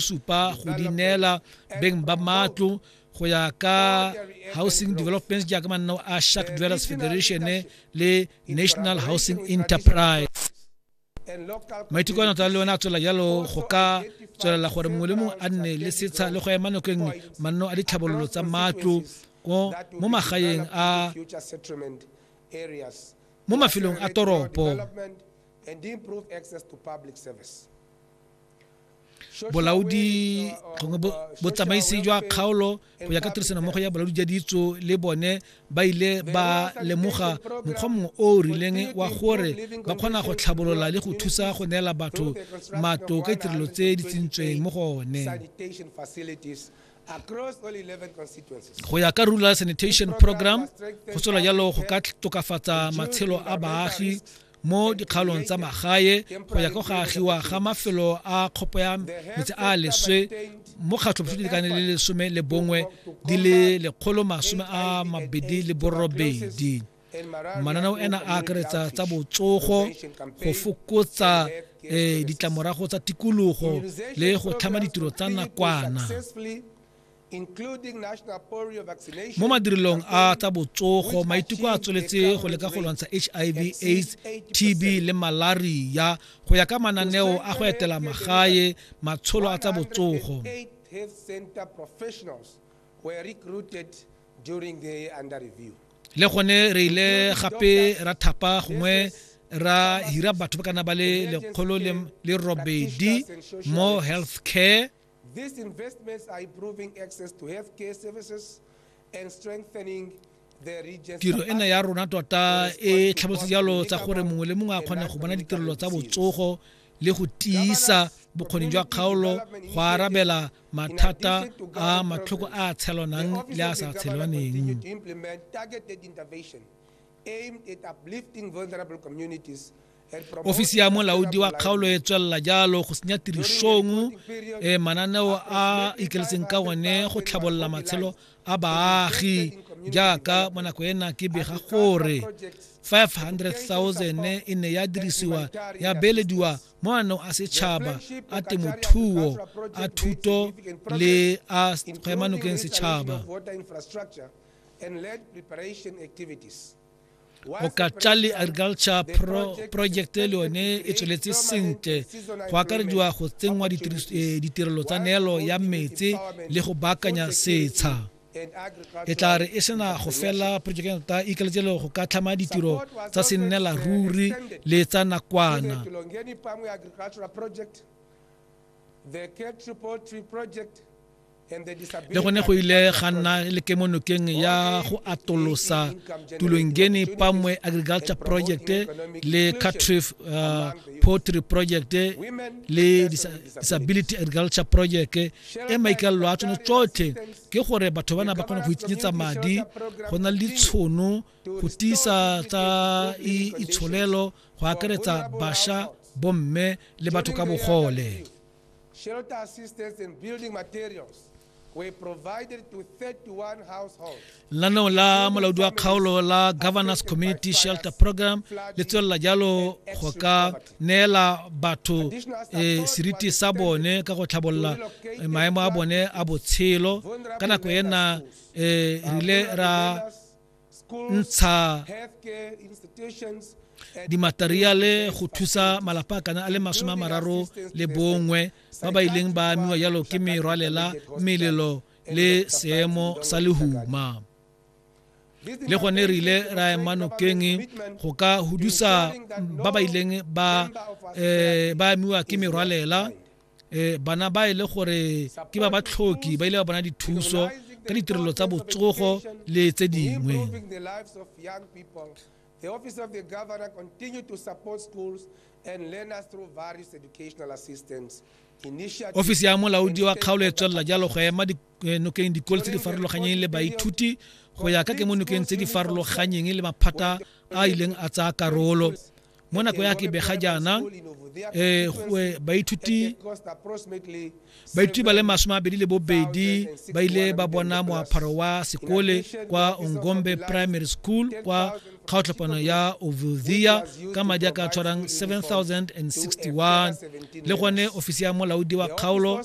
supa go di neela beng ba matlo go ya ka housing developments jaaka manno a shark dwellers federation le national housing enterprise maiteko a nata le one a tswela jalo go ka tswelela gore mongwe le mongwe a nne le setsha le go ema nako e nngwe manno a ditlhabololo tsa matlo mo magaeng a mo mafelong a toropo bolaodi gongwe botsamaisi jwa kgaolo go ya ka tirisanommogo ya bolaodi jwa ditso le bone ba ile ba lemoga mokgwa mongwe o o rileng wa gore ba kgona go tlhabolola le go thusa go neela batho matlo ka ditirelo tse di tsentsweng mo go one go ya ka rural sanitation program go tswela jalo go ka tokafatsa matshelo a baagi mo dikgaolong tsa magae go ya ka go agiwa ga mafelo a kgopo ya metsi a leswe mo kgatlhophutso lekane le lesome le bongwe di le lekgolo masome a mabedi le borobedi mananeo ena a akaretsa tsa botsogo go fokotsa um ditlamorago tsa tikologo le go tlhama ditiro tsa nakwana mo madirelong a tsa botsogo maiteko a tsweletse go leka go lwantsha hiv aids tb le malaria go ya ka mananeo a go etela magae matsholo a tsa botsogo le gone re ile gape ra thapa gongwe ra hira batho ba kana ba le lekgolo le robedi mo health care These investments are improving access to healthcare services and strengthening tiro ena ya rona tota e tlhabotse jalo tsa gore mongwe le mongwe a kgone go bona ditirelo tsa botsogo le go tiisa bokgoni jwa kgaolo go arabela mathata a matlhoko a tshelwanang le a sa tshelwaneng aimed at uplifting vulnerable communities ofisi ya molaodi wa kgaolo e tswelela jalo go senya tirisong e mananeo a ikeletseng ka one go tlhabolola matshelo a baagi jaaka mo nako ena ke bega gore 500,000 e ne ya dirisiwa ya beelediwa mo maanong a setšhaba a temothuo a thuto le a kgwemanokeng setšhaba go ka tla le agriculture pro project le yone e tsweletse sentle go akarediwa go tsenngwa eh, ditirelo tsa neelo ya metsi le go baakanya setsha e tla re e sena go fela project ta ikaletselo go ka tlhama ditiro tsa sennela ruri le tsa nakwana The K Triple Tree Project le gone go ile ga nna le kemonokeng ya go atolosa tulongeni pamwe agriculture project le catrif uh, poultry project le disability agriculture project e maikalelo a tsone tsotlhe ke gore batho bana ba kgone go itsenyetsa madi go na le ditshono go tiisa tsa itsholelo go akaretsa basha bomme le batho ka bogole Shelter assistance and building materials were provided to 31 households. lanao la molaodi wa kgaolo la governors community shelter program le tswelela jalo go ka neela batho eh, seriti sa bone ka go tlhabolola eh, maemo a bone a botshelo ka nako ena eh, re ile ra ntsha dimateriale go thusa malapa a kana a le masome a mararo le bongwe ba ba ileng ba amiwa jalo ke merwalela melelo le seemo sa lehuma le gone re ile ra ema nokeng go ka hudusa ba ba ileng ba eh, ba amiwa ke merwalela e bana ba e le gore ke ba ba tlhoki ba ile ba bona dithuso ka ditirelo tsa botsogo le tse dingwe The Office of the Governor continued to support schools and learners through various educational assistance. ofisi ya molaodi wa kgaolo e tswelela jalo go ema eh, nokeng dikolo tse di farologanyeng le baithuti go ya ka ke mo nokeng tse di farologanyeng le maphata a ileng a tsaya karolo mo nako ya kebega jaana um baithuti baithuti ba le masome a bedi le bobedi ba ile ba bona moapharo wa sekole kwa ongombe primary school kwa kgaotlhapano ya ovildia ka madi a ka tshwarang 7061 le gone ofisi ya molaodi wa kgaolo